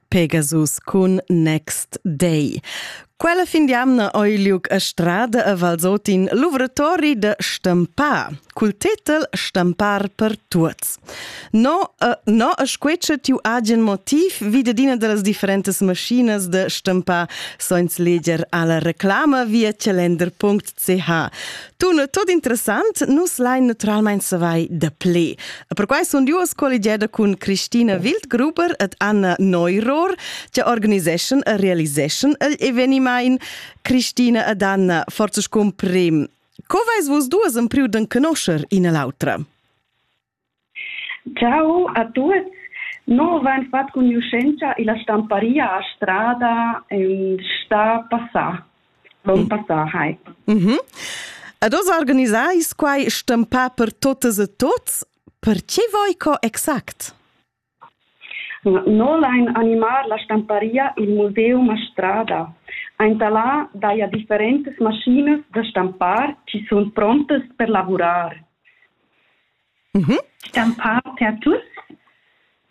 Pegasus cun Next Day. Quella fin d'amna oi liuc a strada a Valsotin l'uvratori de Stampar, cul tetel Stampar per tuots. No, uh, no a squece tiu agen motiv vide dina de las differentes machinas de Stampar soins leger alla reclama via calender.ch. Tun tot interessant, nus lain naturalmein savai da ple. Perquai sun duos colligeda cun Christina Wildgruber ed Anna Neuror, che organiseschan e realiseschan il evenimaint. Christina ed Anna, forza scumprim, co vais vos duas in priu d'en conoscher ina l'autra? Ciao a tuots. No vain fat cugnuschentscha illa stamparia a Strada ün stà passà, l'on passà hai. Mh. Ed hoz organisais quai stampà per totas e tots? Perche voi co exact? No lain animar la stamparia i'l Museum a Strada. Aint da là daja differentas maschinas da stampar chi sun prontas per lavurar. Stampar per tuots?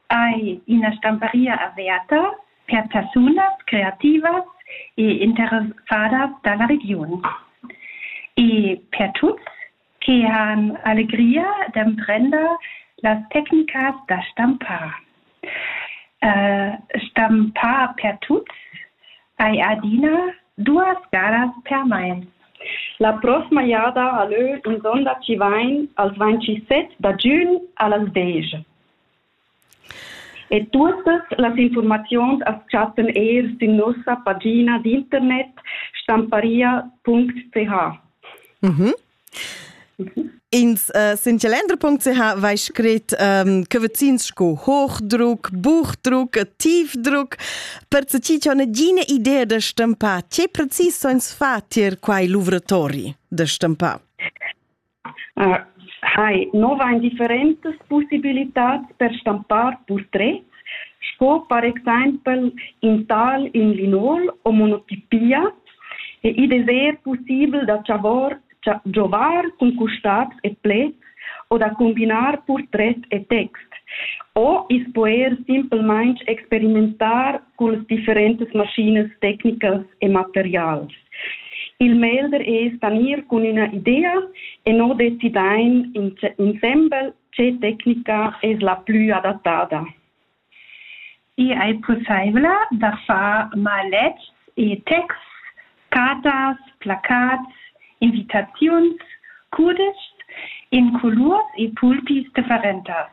Ai üna stamparia aviata per persunas creativas e interessadas da la regiun. E per tuots che han allegria d'emprender las tecnicas da stampar. Uh, stampar per tuts hai adina duas galas per mai. La prossima jada a leu in sonda ci vain als 27 da giun a las 10. E tuottas las infuormaziuns as chattan eir sün nossa pagina d'internet stamparia.ch. Mhm. In uh, sincelendra.ch vai scrit um, che vecins sco Hochdruck, Buchdruck e Tiefdruck per che ci c'è nagina idea da stampar. Che precis sono fatti quai lavoratori da stampar? hai nova indifferentas pussibilitads per stampar purtrets sco per exempel in tal in linol o monotipia e id es eir pussibel da chavar giovar cun custabs e pleds o da combinar purtret e text o i's po eir simplmaing experimentar con las differentas maschinas tecnicas e materials. Il melder es da gnir cun üna idea e no decidain insembel che tecnica es la plü adattada. I è possibile da far maletgs e texts, cartas, placats, invitaziuns, cudeschs in colurs e pulpis differentas.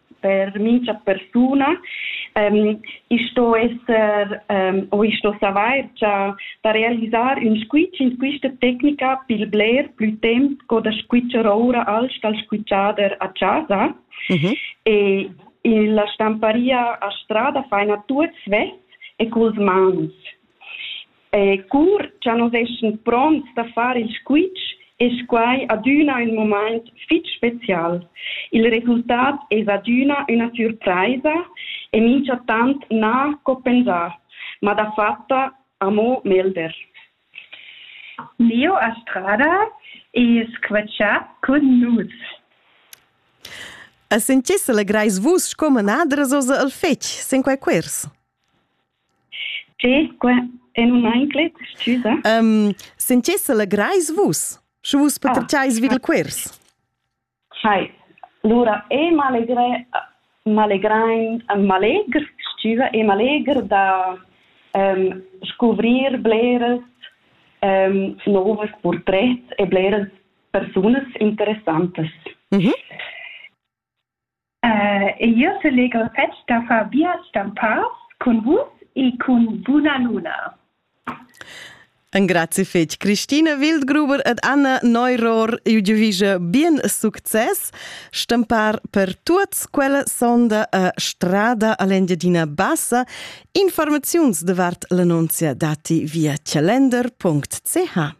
per mincha persuna. Ähm, ich sto esser ähm, o ich sto savoir già da realizzare un squitsch in questa tecnica per bler più tempo co da squitschar ora als dal squitschader a casa. Mm-hmm. E in la stamparia a strada fai na tuts vest e culs mans. Eh, cur cha nus eschan pronts da far il squitsch, es quai adüna ün mumaint fich special. Il resultat es adüna üna surpraisa e minchatant na co pensà, ma dafatta amo melder. Leo Estrada es qua chat cun nus. E sentiss allegrais vus sco manadras oza al fetg, sin quai quers? Tge? Qua è num enclet? Scusa? Um, sentiss legrais vus, sche vus pertgais vi il quers? Hai. Lura è m'allegrè, m'allegrain, m'allegr, scusa, è m'allegr da um, scuvrir bleras um, novas purtrets e bleras persunas interessantas. Mm -hmm. E jeu selegr fetg da far biars stempas cun vus e cun buna luna. Engrazi fetg Christine Wildgruber ed Anna Neuror. Jeu giuvische bien success stempar per tuots quella sonda a Strada all'Engiadina Bassa. Informaziuns davart l'annunzia dati via calender.ch.